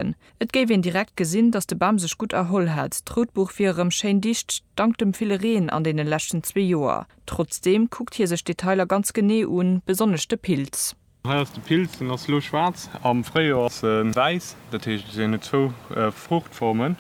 Bamsen. Et géif een direkt gesinn, datt de Bam sech gutt erholl hätt. D'Routbuch wier erëm schéin dicht, dank dem ville Reen an deene leschten zwee Joer. Trotzdeem kuckt hie sech d'Detailer ganz genee un, besonnesch de Pilz. Hei ass de Pilz, deen ass elo schwaarz. Am Fréijoer ass e wäiss, dat heescht, en huet zwou Fruuchtformen.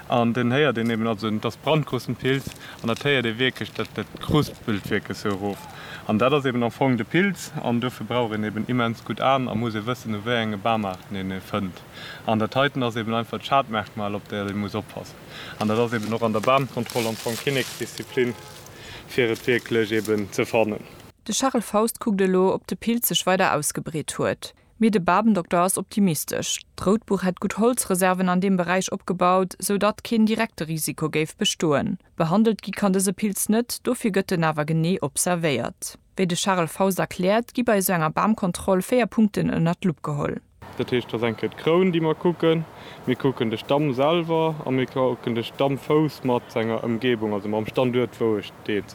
An dann héiert een eben also dass Brandgrossen Pilz an dat héiert ee wierklech, dat kruspelt wierklech sou erof. An dat ass eben am Fong de Pilz an dofir brauch een eben immens gutt Aen a muss ee wëssen u wéi enge Bamaarten een e fënnt. An dat heiten ass eben einfach d'Schadmerkmal op dat ee muss oppassen. An dat ass eben och an der Bamkontroll am Fong Kinneksdisziplin fir et wierklech eben ze fannen. De Charel Faust kuckt elo ob de Pilz sech weider ausgebreet huet. Mee de Babendokter ass optimistesch. D'Routbuch hätt gutt Holzreserven an deem Beräich opgebaut, sou datt keen direkte Risiko géif bestoen. Behandelt gi kann dëse Pilz net, dofir gëtt en awer genee observéiert. Wéi de Charel Faust erkläert, gi bei esou enger Bamkontroll véier Punkten ënner d'Lupp geholl. Dat heescht, et ass eng Kéier d'Kroun, déi mer kucken, mir kucken de Stamm selwer a mir kucken de Stammfouss mat senger Ëmgebung, also mam Standuert, wou e steet.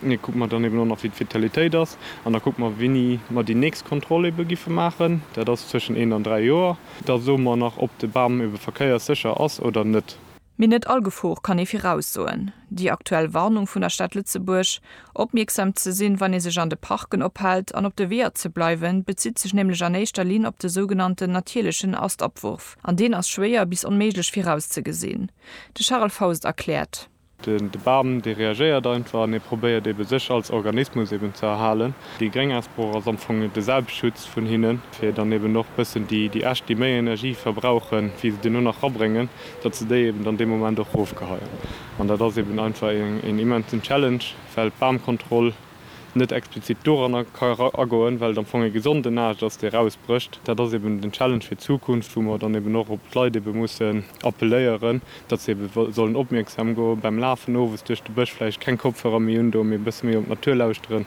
Mir kucke mer dann eben och nach, wéi d'Vitalitéit ass. An da kucke mer, wéini mer déi nächst Kontroll ebe giffe maachen. Dat ass zwëschen eent an dräi Joer. Da soe mer nach, ob de Bam ebe verkéierssécher ass oder net. Mee net all Gefor kann ee viraussoen. Déi aktuell Warnung vun der Stad Lëtzebuerg, opmierksam ze sinn, wann ee sech an de Parken ophält an op de Weeër ze bleiwen, bezitt sech nämlech an éischter Linn op de sougenannten natierlechen Astabwurf. An deen ass schwéier bis onméiglech virauszegesinn. De Charel Faust erkläert. De Bam dee reagéiert einfach an ee probéiert ebe sech als Organismus eben ze erhalen. Déi gréng Asbroch ass am Fong de Selbstschutz vun hinnen, fir dann eben och bëssen déi Äscht déi méi Energie verbrauchen wéi se duerno nach rabréngen, datt se déi eben dann dee Moment och rofgeheien. An dat ass eben einfach een immensen Challenge, well d'Bamkontroll, net explizit doranner ka agoen, well et am Fong e gesonden Aascht ass, dee erausbrécht. Dat ass eeben den Challenge fir d'Zukunft, wou mer dann eeben och op d'Leit eebe mussen appelléieren, datt se eebe sollen opmierksam goen, beim Lafen owes duerch de Bësch vläicht keng Kopfhörer méi undoen, mee e bësse méi op d'Natur lauschteren.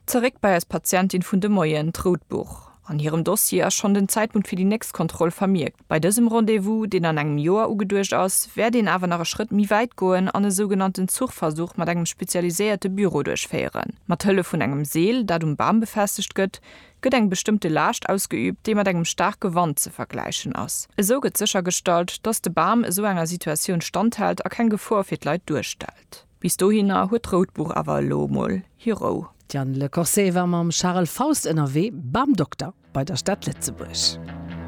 Zeréck bei eis Patientin vun de Moien, d'Rout Buch. an hirem Dossier ass schonn den Zäitpunkt fir déi nächst Kontroll vermierkt. Bei dësem Rendez-vous, deen an engem Joer ugeduecht ass, wäert een awer nach e Schrëtt méi wäit goen an e sougenannten Zuchversuch mat engem spezialiséierte Büro duerchféieren. Mat Hëllef vun engem Seel, dat um Bam befestegt gëtt, gëtt eng bestëmmte Laascht ausgeüübt, déi mat engem staarke Wand ze vergläichen ass. Esou gëtt séchergestallt, dass de Bam esou enger Situatioun standhält a keng Gefor fir d'Leit duerstellt. Bis dohinner huet d'Routbuch awer elo mol hir Rou. D'Diane Le Corset war mam Charel Faust ënnerwee, beim Dokter bei der Stad Lëtzebuerg.